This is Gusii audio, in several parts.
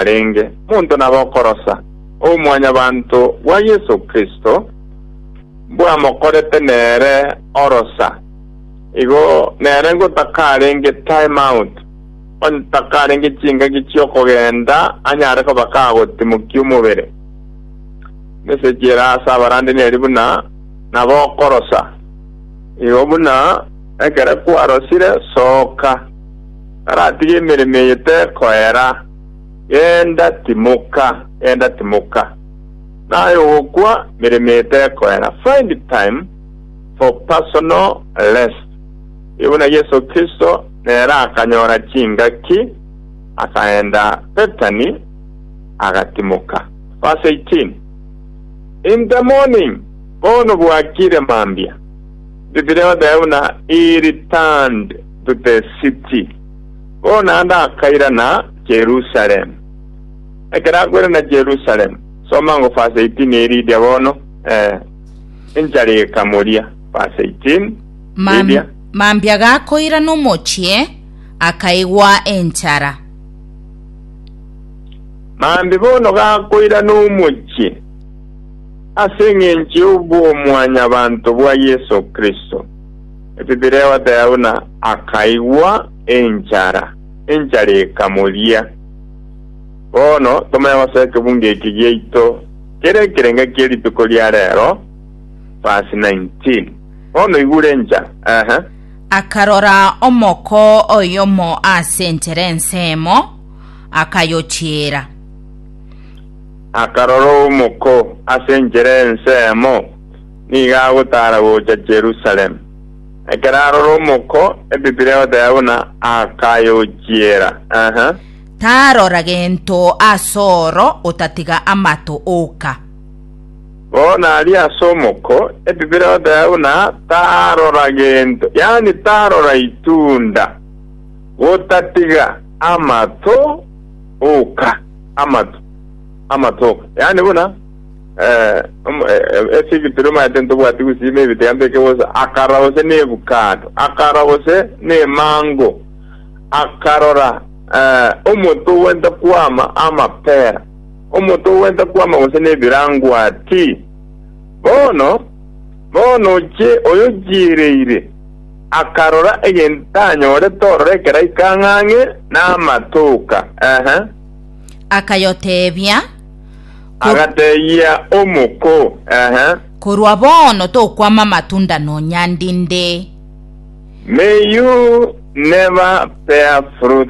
arenge monto nabe okorosa obomwanyabanto bwa Yeso Kristo bwamokorete nere orosa, igo nere ngotakarenge tie mount, otakarenge chingaki chi'okogenda anyare koba kagotimokia omobere. Meseji ere ase abarande neri buna, Nabe okorosa, igo buna ekero kwarosire, soka. Naratige emeremo eye tekoera. Genda, timoka, genda, timoka. Naye ogokwa, emeremo eye tekoera. Find time for personal rest. Erio buna Yeso Kristo nere akanyora chingaki, akaenda Bethany, agatimoka. Verse 18, In the morning, bono bwakire mambia, the brethren he returned to the city. Bono naende akairana Jerusalem. Ekero akoirana Jerusalem, soma ngo verse 18 eridia bono, eh, enchara ekamoria, verse 18, Mam- eridia. mambia gakoirana omochie akaigwa enchara Mambi bono gakoirana omochie ase eng'encho y'obwomwanyabanto bwa Yeso Kristo. Etitiri egoteeba buna akaigwa enchara, enchara ekamoria. Bono tomanye gose ekebungo eke giaito kere ekerenge kie rituko ria reero, verse 19. Bono igure enchara, ehe. Akarora omoko oyomo ase enchera ensemo, akayochiera. Akarora omoko ase enchera ensemo, nigo agotaara gocha Yerusalemu. Ekero arora omoko, Ebiblia egoteba buna akayochiera. Tarora gento as'oro otatiga amato oka. Bono aria as'omoko, Ebiblia egoteba buna tarora gento, yaani tarora itunda, gotatiga amato oka, amato, amato oka, yaani buna. Eh, omo- eh, eh, ase ebituri omanyete ntobwati gusima ebitega mbeke bosa akara gose nebukado akara gose nemango akarora eh, omoto ogwenta kwama amapera omoto ogwenta kwama gose nebirangwati bono bono oche oyo chiereire akarora egento anyorete orora ekeraika ng'ang'e namatoka ehe akayoteebia Agatebia omoko, Ehe. Korwa bono tokwama amatunda nonya ndinde. May you never bear fruit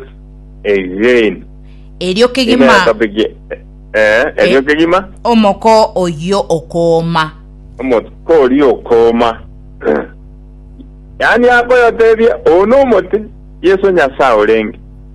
again. Erio kegima. Ime topic e- eh, erio Eh. kegima Omoko oyio okooma. omotiko oria okoma. Yaani akoyotebia, oo nomote, Yeso Nyasae orenge.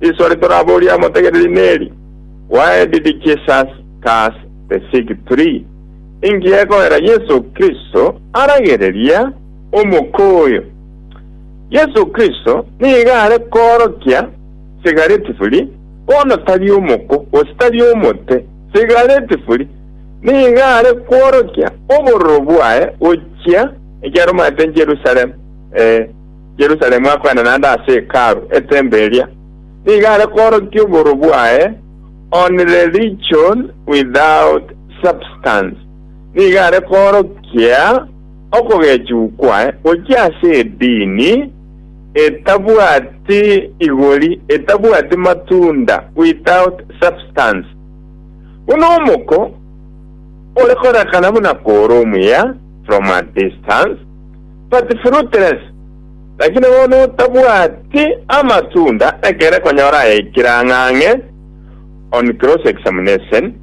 Risoa ritoraboria amotegereri neri, Why did Jesus curse the fig tree? Inki gekoera Yeso Kristo aragereria omoko oyo? Yeso Kristo nigo are koorokia sigaretifuli, bono tari omoko, gose tari omote. Sigaretifuli nigo are kworokia obororo bwaye gochia ekiaromate Jerusalem. Ee. Yerusalemu akoenda naende ase Hekalu, eteembo eria, nigo are koorokia obooro bwaye, on religion without substance, nigo are koorokia okogechigwa kwaye gochia ase edini etabwati igori, etabwati matunda, without substance. Buna omoko ore korakana buna koora omuya from a distance, But fruitless, Lakini bono otabwati amatunda ekere konyora ayaikire ang'ang'e on cross examination,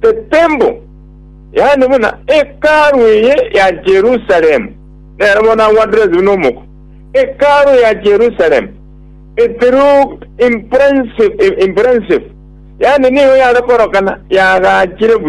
the temple, yaani buna Hekalu eye ya Jerusalem, nere bono agwanire buna omoko, Hekalu ya Jerusalem, it looked impressive, impressive, yaani nigo yare korokana yagachire buya.